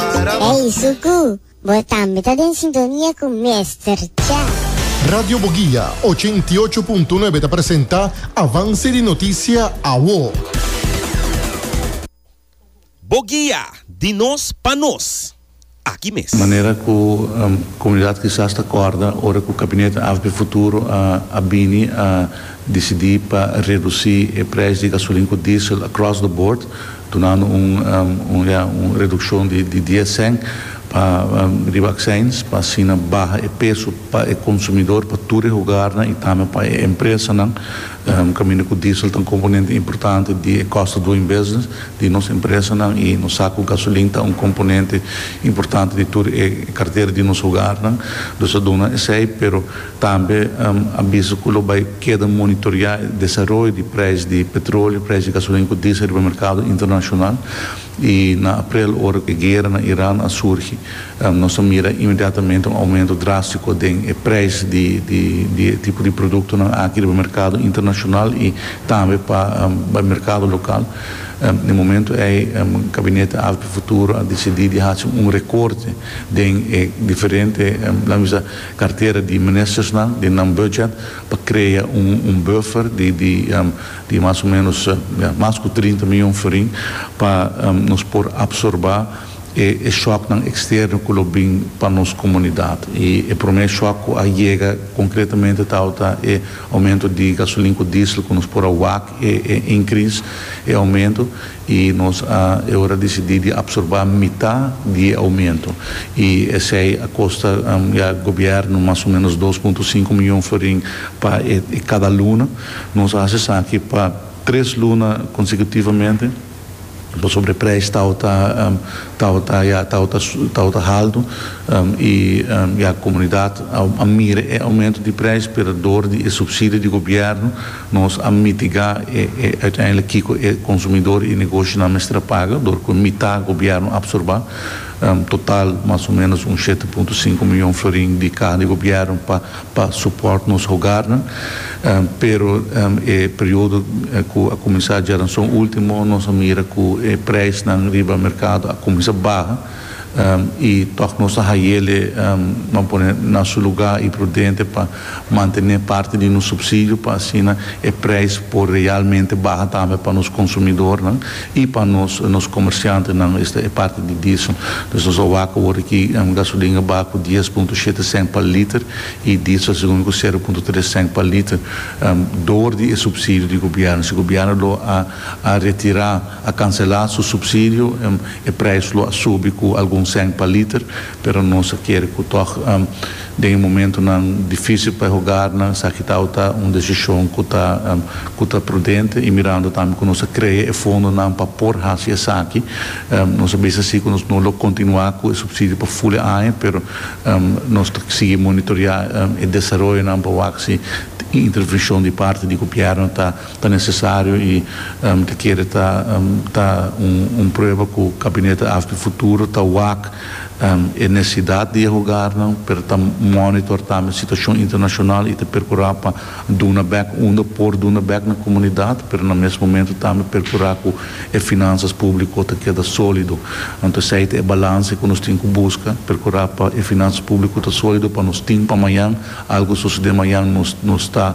Ey Suku, bo tambe ta den sintonia cu Mester Cha. Radio Boguia ochenta i ocho punto nuebe ta presenta Avance di Noticia Awo. Boguia, di nos pa nos. Aki mes. Manera cu comunidad kisas ta corda ora cu Cabinet AFB Futuro a bini a dicidi pa reduci e prijs di gasolin cu diesel across the board, Dunando un un ya un reduccion di di dies cent pa riba accins pa asina baha e peso pa e consumidor pa tur e hogarnan y tambe pa e empresanan caminda cu diesel ta un componente importante di e cost of doing business di nos empresanan y nos sa cu gasolin ta un componente importante di tur e cartera di nos hogarnan dus a duna esey pero Tambe a bisa cu lo bay keda monitorea e desaroyo di prijs di petroleo, prijs di gasolina cu diesel riba mercado internacional. Y na aprel ora cu e guera na Iran a surgi nos a mira inmediatamente un aumento drastico den e prijs di di e tipo di productonan aki riba mercado internacional y tambe pa bay mercado local. Na e momento ey Gabinete Alto Futuro a dicidi di haci un recorte den e diferente lamis a. Kartera di Ministersnan den nan budget pa krea un buffer di mas o menos mas ku trinta mion forin pa nos por apsorbá e shòknan eksterno ku lo bin pa nos komunidat. I e promé shòk ku a yega konkretamente tabata e oumento di gasolin ku diesel ku nos por a wak e inkris e oumento. I nos a e ora disidí di apsorbá mitá di e oumentu. I esei a kosta ya gobièrnu mas o ménos dos punto sinku mion florin pa e kada luna. Nos a hasi esaki pa tres luna konsekutivamente pasobra e preis tabata tabata ya tabata tabata haltu i ya komunidat a mira e oumentu di preis pero dor di e supsidio di gobièrnu. Nos a mitigá e e uiteindelik kiko e konsumidor i negoshonan mester a paga dor ku mitá gobièrnu apsorbá total mas o ménos un shete punto sinku mion florin di kaha di gobièrnu pa pa supòrt nos hogarnan. Pero e periodo ku a kuminsá djaranson último nos a mira ku e preisnan riba merkado a kuminsá baha i tòg nos ta haye'l e, nan pone, na su lugá i prudente pa Mantené parti di nos supsidio pa asina e prijs por realmente baha tambe pa nos konsumidornan i pa nos nos komersiantenan, esta e parti di diesel. Pues nos a wak awor aki gasolin a baha ku dies punto shete sènt pa liter i diesel segun mi ku sero punto tres sènt pa liter dor di e supsidio di gobièrnu. Si gobièrnu lo a a retirá, a kanselá su supsidio, e prijs lo a subi ku algun sènt pa liter, pero nos a kere ku tòg. Den e momentunan difísil pa e hogarnan, esaki ta o ta un desishon ku ta ku ta prudente i mirando tambe ku nos a krea e fondonan pa por hasi esaki. Nos a bisa si ku nos no lo kontinuá ku e supsidio pa ful e aña, pero nos ta sigui monitoreá e desaroyonan pa wak si un intervenshon di parti di gobièrnu ta ta nesesario i ta kere ta ta un prueba ku Gabinete Afp Futuro ta wak e nesesidat di e hogarnan, pero ta monitor tambe situashon internashonal i ta perkurá pa duna bèk unda por duna bèk na komunidat, pero na mes momentu tambe perkurá ku e finansas públiko ta keda sólido. Anto esei ta e balanse ku nos tin ku buska, perkurá pa e finansas públiko ta sólido pa nos tin pa mañan, algu sosodé mañan nos nos ta.